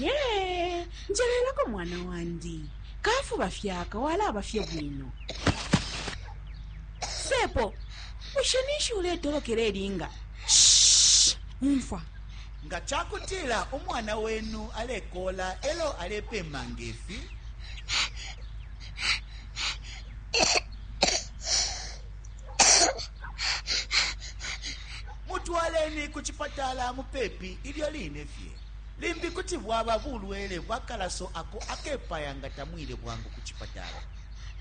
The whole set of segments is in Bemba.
ye njelelako mwana wandi kafuba fyaka walaba fye bwino sepo bushe ninshi uletolokela elinga umfwa nga cakutila umwana wenu alekola elo alepema ngefi Mutwaleni ku cipatala mupepi ilyo line fye. Limbi kuti bwaba bulwele bwa kalaso ako akepaya nga tamwile bwangu ku cipatala.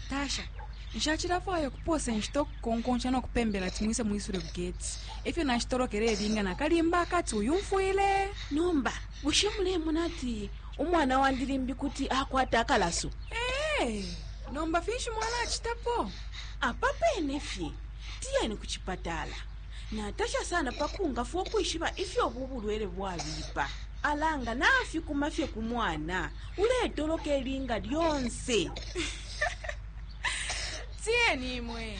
Tasha, Nshacilafwaya ukupoosa inshita ukukonkonsha no kupembela ati mwise mwisule ku geti. E fyo nashitolokele ilinga na kalimba akati, Uyumfwile? Nomba Bushe mulemona ati umwana wandi limbi kuti akwata akalaso? Ee, nomba finshi mwalacitapo? Apa pene fye, tiyeni ku cipatala. Natasha sana pa kungafwa ukwishiba ifyo ubu bulwele bwabipa. Ala nga nafikuma fye ku mwana uletoloka ilinga lyonse! Tiyeni imwe!